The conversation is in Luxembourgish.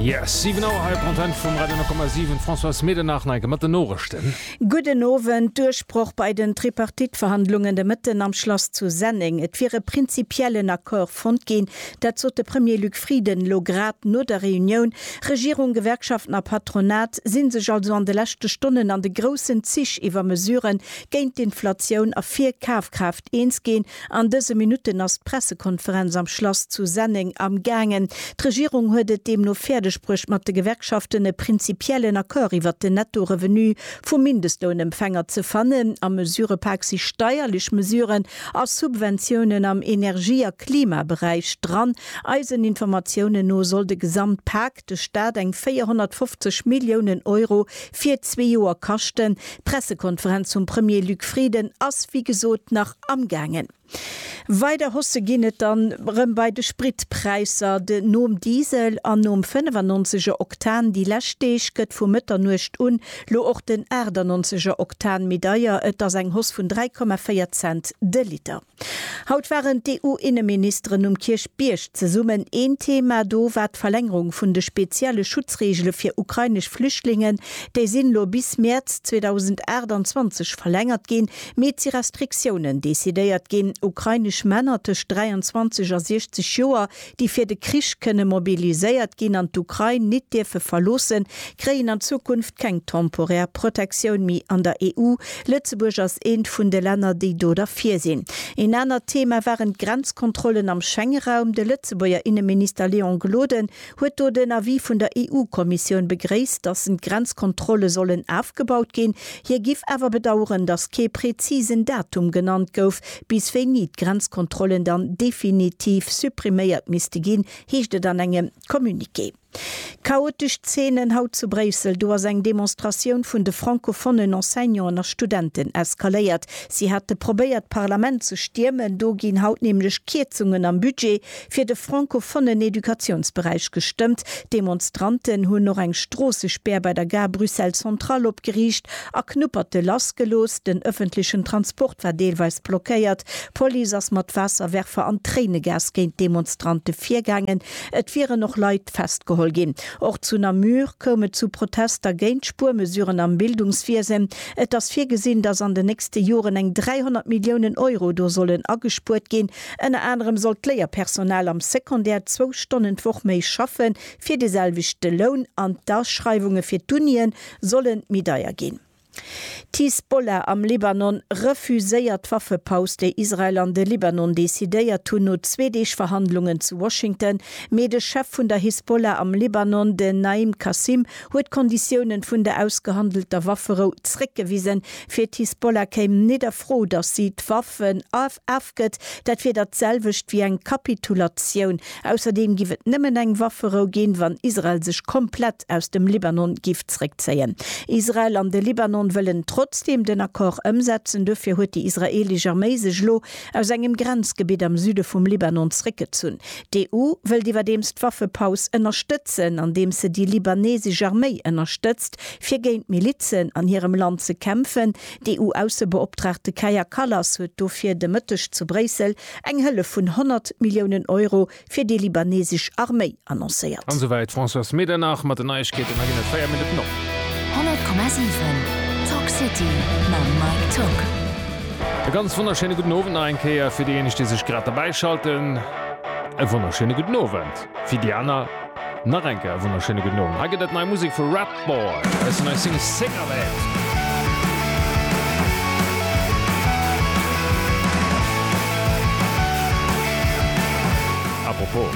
Yes, 7 Auer hei op der Antenne vum Radio 10,7. Françoise Medernach, Neige mat den Noorichten. Gudden Owend. Duerchbroch bei den Tripartite-Verhandlungen de Mëtten am Schlass zu Senneng. Et wier e prinzipiellen Accord fonnt ginn. Dat sot de Premier Luc Frieden elo grad no der Reunioun. Regierung, Gewerkschaften a Patronat si sech also an de leschte Stonnen an de groussen Zich iwwer Mesuren géint d'Inflatioun a fir Kafkraaftsteigerungen Eens ginn. An dëse Minutten ass d'Pressekonferenz am Schlass zu Senneng am gaangen. D'Regierung huet et deemno fäerdeg bruecht mat de Gewerkschaften e prinzipiellen Accord iwwert den Netto-Revenu vum Mindestlounempfänger ze fannen. Am Mesurëpak si steierlech Mesuren a Subventiounen am Energie a Klimaberäich dran. Eisen Informatiounen no soll de Gesamtpak, de Staat eng 450 Milliounen Euro fir zwee Joer kaschten. D'Pressekonferenz vum Premier Luc Frieden ass wéi gesot nach amgaangen. Weider Hausse ginn et dann erëm bei de Spritpräisser. De nom Diesel an nom 95 er Oktan déi lescht Deeg gëtt vu Mëtternuecht un lo och den 98 er Oktan méi deier. Et ass eng Hoss vun 3,4 Cent de Liter. Haut waren d'EU-Inneministeren um Kierchbierg zesummen. Een Thema do war d'Verlängerung vun de spezielle Schutzreegele fir ukrainesch Flüchtlingen. Déi sinn elo bis Mäerz 2028 verlängert ginn. Mee et si Restriktiounen decidéiert ginn. Ukrainesch Männer tëscht 23 a 60 Joer déi fir de Krich kënne mobiliséiert ginn an d'Ukrain nit dierfe verloossen, kréien an Zukunft keng temporär Protektioun méi an der EU. Lëtzebuerg ass eent vun de Länner, déi do derfir sinn. Een anert Thema waren d'Grenzkontrollen am Schengeraum. De Lëtzebuerger Inneminister Léon Gloden huet do den Avis vun der EU-Kommissioun begréisst, datt en d'Grenzkontrolle sollen afgebaut ginn. Hie giff awer bedaueren, datt kee prezisen Datum genannt gouf, Bis wéini d'Grenzkontrollen dann definitiv suppriméiert misste ginn, heescht et an engem Communiqué. Chaotesch Zeenen haut zu Bréissel, Do ass eng Demonstratioun vun de francofonnen Enseignanten a Studenten eskaléiert. Si hate probéiert d'Parlament ze stiermen, do ginn haut nämlech Kierzungen am Budget fir de francofonnen Educatiounsberäich gestëmmt. D'Demonstranten hunn och eng Stroossespär bei der Gare Bruxelles Centrale opgeriicht a Knupperte lass gelooss. Den ëffentlechen Transport war deelweis blockéiert. D'Police ass mat Waasserwerfer an Tréinegas géint d'Demonstrante virgaangen. Et wieren och Leit festgeholl ginn. Och zu Namur koum et zu Protester géint d'Spuermesuren am Bildungswiesen. Et ass virgesinn, datt an den nächste Joren eng 300 Milliounen Euro do sollen agespuert ginn. Ënner anerem soll d'Léierpersonal am Secondaire zwou Stonnen d'Woch méi schaffe fir de selwechte Loun an d'Aschreiwunge fir d'Unië solle méi deier ginn. D'Hisbollah am Libanon refuséiert d'Waffepaus, déi Israel an de Libanon decidéiert hunn no zwee Deeg Verhandlungen zu Washington. Mee de Chef vun der Hisbollah am Libanon, den Naim Qassem, huet d'Konditiounen vun der ausgehandelter Wafferou zréckgewisen. Fir d'Hisbollah kéim net a Fro, datt si d'Waffen a. afgëtt, dat wier dat selwecht wéi eng Kapitulatioun. Ausserdeem giff et nëmmen eng Wafferou ginn, wann Israel sech komplett aus dem Libanon giff zréckzéien. Israel an de Libanon wëllen trotzdeem den Accord ëmsetzen. Duerfir huet déi israeelesch Arméi sech elo aus engem Grenzgebitt am Süde vum Libanon zréckgezunn. D'EU wëllt iwwerdeems d'Waffepaus ënnerstëtzen, andeems se déi libanesesch Arméi ënnerstëtzt, fir géint d'Milizen an hirem Land ze kämpfen. D'EU-Aussebeoptraagte Kaja Kallas huet dofir de Mëtteg zu Bréissel eng Hëllef vun 100 Milliounen Euro fir déi libanesesch Arméi annoncéiert. An esouwäit d'Françoise Medernach mat den Neiegkeeten. Da ginn et 4 Minutten op. 100,7 Talk City mam Mike Tock. E ganz wonnerschéine gudden Owend nach eng Kéier fir déijéineg, déi sech grad derbäischalten. E wonnerschéine gudden Owend fir déi aner. Nach eng Kéier e wonnerschéine gudden Owend. Hei gëtt et nei Musek vu Ratboy aus der neier Single Cigarette. Apropos.